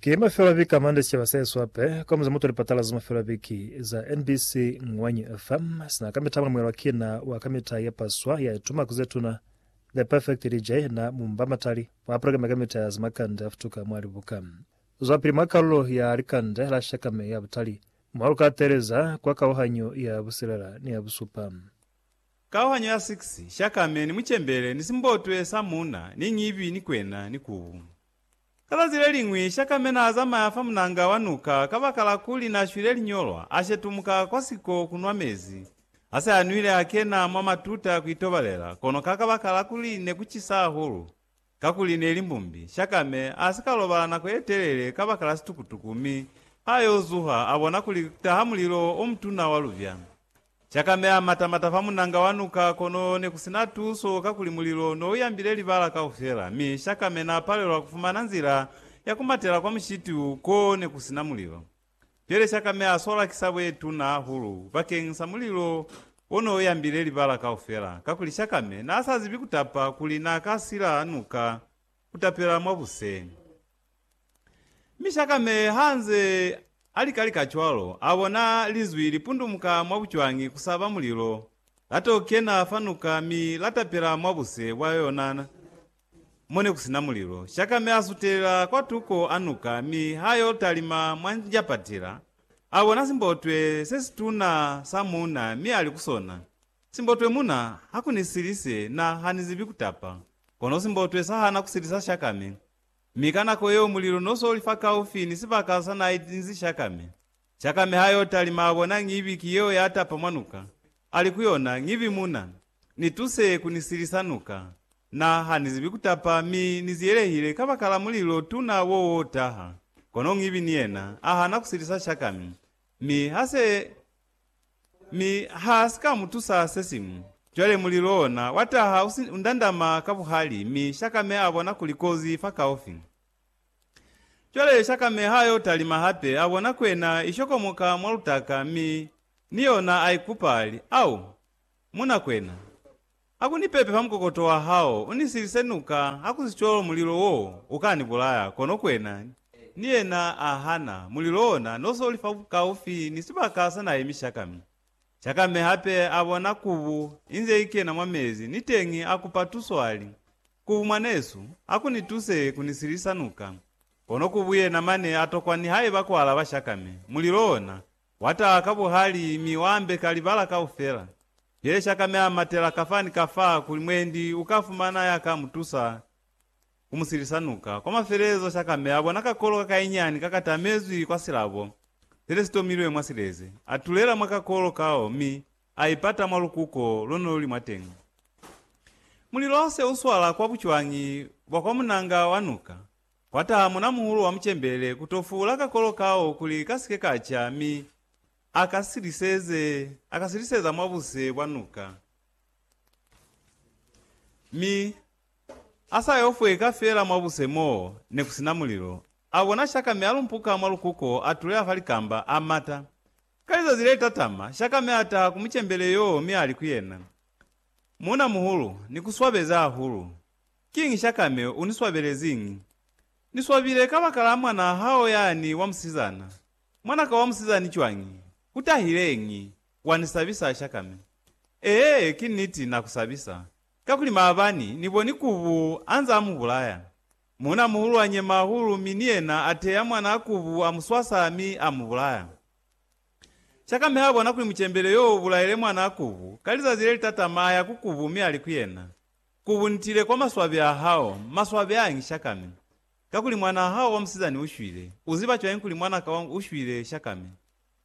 Ki mafelo a viki a mande sicaba sa Yesu ape kwa muza muto lipatala za mafelo a viki za NBC Ngwanyi FM sina ka mitala mulomwelwa ki na wa ka mita ye paswa ya ituma ku zetuna The Perfect DJ na mumba matali mwa programe ka mita ya za makande a futuka mwa libuka zwa pili mwa kalulo ya likande la shaka me ya butali mwa lu ka teeleza kwa kauhanyo ya busilela ni ya busupa. Kauhanyo ya 6, Shakame ni mucembele ni simbotwe sa muuna ni ñibi ni kwena ni kubu. Ka zazi leliñwi, Shakame naazamaya fa munanga wa nuka kabakala kuli naashwile liñolwa, ashetumuka kwa siko kunwa mezi. Hase anwile, akena mwa matuta kuitobalela, kono ka kabakala kuli nekucisa hahulu, Kakuli neli mbumbi, Shakame asika lobala nako yetelele kabakala situkutuku mi ayo zuha abona kuli kutaha mulilo omutuna wa lubya. Shakame amata mata fa munanga wa nuka kono nekusina tuso kakuli mulilo nouyambile libala kaufela mi Shakame napalelwa kufumana nzila yakumatela kwa mushiti u ko nekusina mulilo. Pele sha kameha sola ki sa buetuna hahulu bakeng sa mulilo o ne o yambile libala kaufela, kakuli Shakame n'a sa zibi ku tapa kuli n'a ka sila nuka ku tapela mwa buse. Mi Shakame ha nze a lika lika cwalo, a bona Linzwi li pundumuka mwa bucwangi ku sa ba mulilo, la t'o kena fa nuka mi la tapela mwa buse bwa yona. Mo ne ku si na mulilo, Shaka mi a sutelela kwa tuko a nuka mi ha yo talima mwa njapatila. A bona simbotwe se situna sa muuna mi a li ku sona, Simbotwe muna, ha ku ni silise, na ha ni zibi ku tapa. Kono simbotwe sa hana ku silisa Shaka mi. Mi ka nako yeo mulilo no so li fakaufi ni sibaka sa n'a itinzi Shaka mi. Cakami ha yo talima bona Ngivi ki yeo ya tapa mwa nuka, ali ku yona, Ngivi muna, ni tuse ku ni silisa nuka. Na, ha ni zibi ku tapa mi ni ziyelehile kabakala mulilo tuna wo wo taha. Kono Ngivi ni yena a hana ku silisa Cakami, mi ha se, mi ha si ka mu tusa sesiñwi. Cwale mulilo ona wa taha u si, u ndandama ka buhali, mi Cakami a bona kuli kozi i fakaufi. Cwale shakameha yo talima hape, a bona kwena i shokomoka mwa lutaka, mi ni yona a ikupa, a li, Au, muna kwena, ha ku ni pepe fa mukokoto wa hao, u ni silise nuka, hakusicwalo mulilo wo u ka ni bulaya. Kono kwena ni yena a hana, mulilo wona no so li fakaufi ni sibaka sa na yemi shaka. Mi shakame hape a bona kubu inze i kena mwa mezi, niteñi a kupa tuso, a li, Ku mwanesu, a ku ni tuse ku ni silisa nuka. Kono ku buyena mane a tokwa nihaiba ku alaba shaka mi mulilo ona wa taha ka buhali mi wa ambeka libala kaufela. Pye shaka mi a matela kafa ni kafa kuli mwendi u ka fumana ya ka mu tusa ku mu silisa nuka. Kwa mafelelezo shaka mi a bona kakolo ka kainyani ka ka tamezwi kwa silabo se le si tomilwe mwa sileze. A tulela mwa kakolo kao mi A ipata mwa lukuko lo ne lu li mwateñi. Mulilo ha se u swala kwa bucwañi bwa kwa munanga wa nuka, kwa taha munamuhulu wa mucembele ku to fuula kakolo kao kuli ka si ke ka ca mi a ka siliseze, a ka siliseza mwa buse bwa nuka, mi a sa yo fweka fela mwa buse mo ne ku si na mulilo. A bona shaka mi a lumpuka mwa lukuko, a tuleha fa likamba, a mata. Ka lizazi le tatama, Shakame a taha ku mucembele yoo mi a li ku yena, Muuna muhulu, ni ku swabezi hahulu. Kiñi Shakame u ni swabeleziñi? Ni swabile kabakala mwanaa hao yani wa musizana. Mwana ka wa musizani cwañi? U tahileñi? Wa ni sabisa, Shakame. Ee, ki niti, na ku sabisa. Kakuli maabani, ni boni kubu anze a mu bulaya. Muna muhulu anyema hahulu mi ni yena ateya mwana a kubu, amuswasa mi amubulaya. Shakameha bona kuli mucembele yo ubulaile mwana a kubu, ka lizazi lelitatama aya ku kubu mi ali ku yena, Kubu nitile kwa maswabi ahao, maswabi aya ngi shakame, kakuli mwanaa hao wa musizani ushwile, uziba cwañi kuli mwanaka wa ushwile shakame?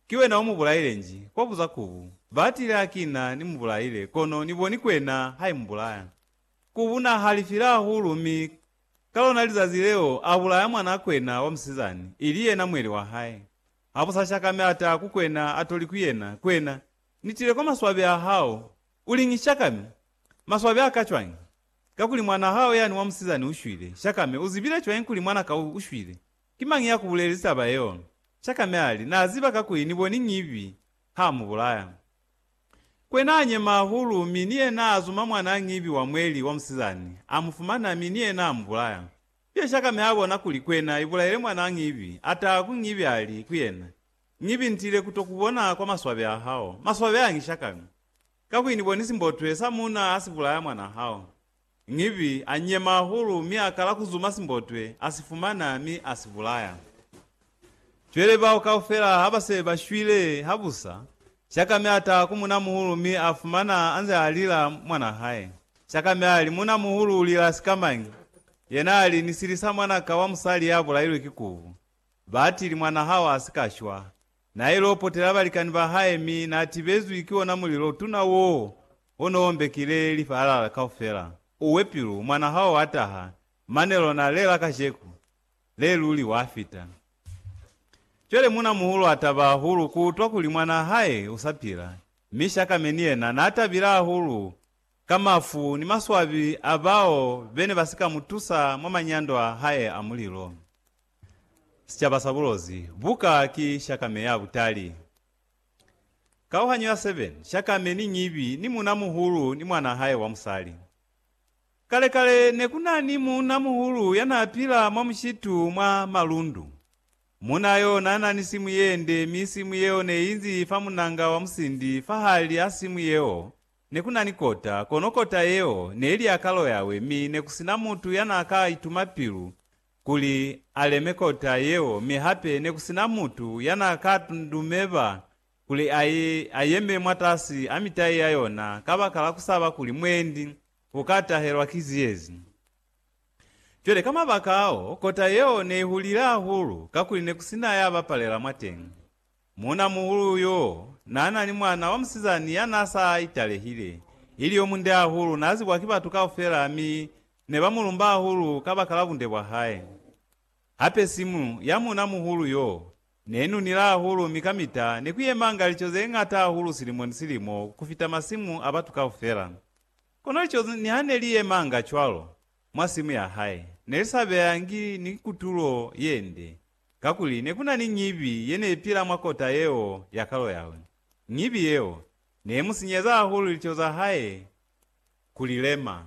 Ki wena omubulaile nji, kwabuza kubu. Baatile hakina ni mubulaile, kono ni boni kwena haimubulaya. Ku buna halifile hahulu mi ka lona lizazi leo a bulaya mwanakwena wa musizani, ili yena mweli wa hae. Ha bu sa shakame a ta ku kwena a to li ku yena, Kwena, ni tile kwa maswabi a hao, u li ngi shakame? Maswabi a ka cwañi? Kakuli mwana hao yani wa musizani u shwile. Shakame, u zibile cwañi kuli mwana ka u shwile? Ki mañi ya ku bulelezi taba yeo? Shakame a li, Na ziba kakuli ni boni ñibi ha mu bulaya. Kwe naa nyema hahulu, mi ni yena a zuma mwanaa ñibi wa mweli wa musizani, a mu fumana, mi ni yena a mu bulaya. Pyesha kame a bona kuli kwena ibulaile mwanaa ñibi, a taha ku ñibi a li ku yena, Ñibi ntile ku to ku bona kwa maswabe a hao, maswabe a ngisha kame, kakuli ni boni simbotwe sa muuna ha si bulaya mwanaa hao. Ngivi a nyema hahulu mi a kala ku zuma simbotwe, a si fumana, mi a si bulaya. Cwele bao kaufela ha ba se ba shwile habusa, Shakame a taha ku munamuhulu mi a fumana a nze a lila mwanaa hae. Shakame a li, Munamuhulu u lila sikamañi? Yena a li, Ni silisa mwana ka wa musali ya bulailwe ki kubu. Ba atili, Mwanaa hao a si ka shwa. Nail'o potela balikani ba hae mi na tibezwi ki ona mulilo tuna woo o no ombekile lifaalala kaufela. Uwe pilu, mwana hao wa taha, mane lona le la kajeku, le luli wa fita. Cwale muna muhulu a taba hahulu ku utwa kuli mwana hae u sa pila, mi Shakame ni yena na tabile hahulu ka mafu ni maswabi a bao be ne ba si ka mu tusa mwa manyando a hae a mulilo. Sicaba sa bulozi buka ki shakame ya butali. Kauhanyo ya 7, Shakame ni ñibi ni muuna-muhulu ni mwanaa hae wa musali. Kale-kale, ne ku na ni muuna-muhulu ya naa pila mwa mushitu mwa malundu. Muuna yo naa na ni simu ye nde mi simu yeo ne i nzi fa munanga wa musindi. Fahali a simu yeo ne ku na ni kota, kono kota yeo ne li ya kalo yawe mi ne ku si na mutu ya naa ka ituma pilu kuli a leme kota yeo, mi hape ne ku si na mutu ya n'a ka ndumeba kuli a ye a yeme mwatasi a mitai ya yona kabakala ku saba kuli mwendi u ka tahelwa ki ziyezi. Cwale ka mabaka ao, kota yeo ne i hulile hahulu kakuli ne ku si na ya bapalela mwateñi. Muuna-muhulu yoo naanani mwana wamusizani yanaasa italehile, ili yomunde hahulu, naazibwa ki batu kaufela mi nebamulumba hahulu kabakala bunde bwahae. Hape simu ya muuna-muhulu yoo neenunila hahulu mi kamita nekuyemanga lico zeñata hahulu silimo ni silimo kufita masimu abatu kaufela. Kono lico niha neliyemanga cwalo mwa simu yahae, nelisabeyangi ni kutulo yende. Kakuli ne ku na ni ñibi ye ne i pila mwa kota yeo ya kalo ya hae. Ñibi yeo ne i mu sinyeza hahulu liteho za hae ku li lema.